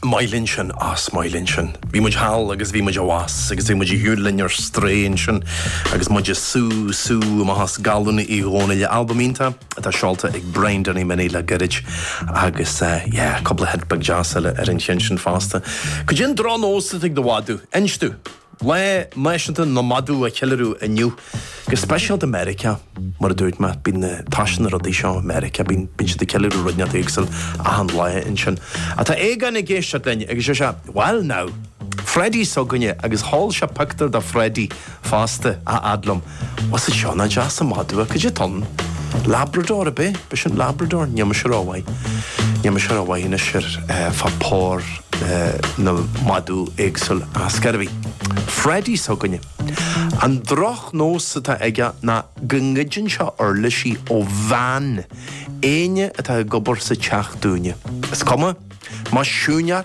Maith linn sin, is maith linn sin. Bhí muid thall agus bhí muid abhus agus bhí muid ag siúl linn ar strae ansin agus muid ag sú, sú, amach as galún Uí Dhónaill. Albam iontach atá seolta ag Brian Danny Minnie le gairid agus yeah, cúpla hit beag deas eile ar an cheann sin fosta. Caidé an drochnós atá ag do mhadadh? Inis domh! Lá Náisiúnta na Madadh á cheiliúradh inniu, go speisialta i Meiriceá. Mar a dúirt mé, bíonn tá's agat na rudaí seo i Meiriceá, bíonn siad ag ceiliúradh ruidneacht éagsúil achan lá ansin. Ach tá Aogán ag éisteacht linn agus is é, bhuel now, Freddie s'againne agus sheol sé pictiúr de Freddie fosta, a fhad liom. Bhfuil a fhios agat seo, nach deas an madadh é. Caidé tá ann? Labrador ab é, ab é sin, Labrador, níl mise ró-mhaith. Níl mise ró-mhaith anois fá phór na madadh éagsúil ar scor ar bith. Freddy s'againne. An drochnós atá aige ná go ngoideann sé uirlisí ó veain éinne atá ag obair sa teach dúinne. Is cuma, más siúineár,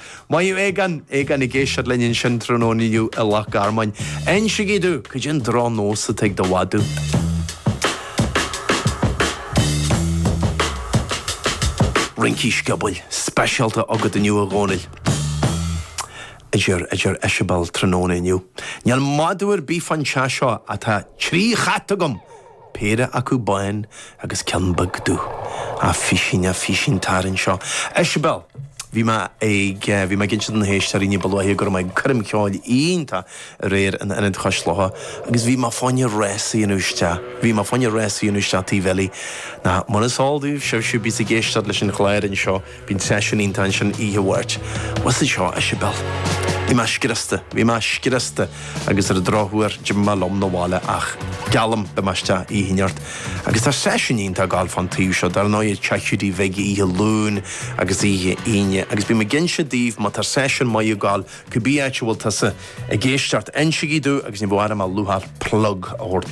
Maith thú Aogán, Aogán ag éisteacht linn ansin tráthnóna inniu i Loch Garman. Insigí domh caidé an drochnós atá ag do mhadadh. Rincí sciobóil speisialta agat inniu a Dhomhnaill, a deir a deir Isibéal tráthnóna inniu. Níl madadh ar bith fán teach seo atá trí chat agam! péire acu bán agus ceann beag dubh. A phuisín, a phuisín, tar anseo. Isibéal! Bhí mé ag, bhí mé ag inse do na héisteoirí ní ba luaithe go raibh mé ag coirm cheoil iontach aréir in Ionad Chois Locha agus bhí mé fá choinne rás a dhéanamh isteach, bhí mé fá choinne rás a dhéanamh isteach Tigh Bhillie nó, mar is eol daoibh, sibhse a bíos ag éisteacht leis an chlár anseo, Bíonn seisiún iontach ansin oíche Mháirt. Bhfuil a fhios agat seo, a Isibéal. Bhí mé scriosta. Bhí mé scriosta agus ar an drochuair d'imigh mé liom 'na bhaile ach, geallaim, beidh mé isteach oíche Mháirt. Agus tá seisiún iontach ag gabháil fán taobh seo, dar ndóigh, i dTeach Hiúdaí Bhig oíche Luain agus oíche Aoine. Agus bím ag inse daoibh, má tá seisiún maith ag gabháil cibé áit a bhfuil tusa ag éisteacht, insigí domh agus ní bheadh orm ach lúcháir plug a thabhairt dó.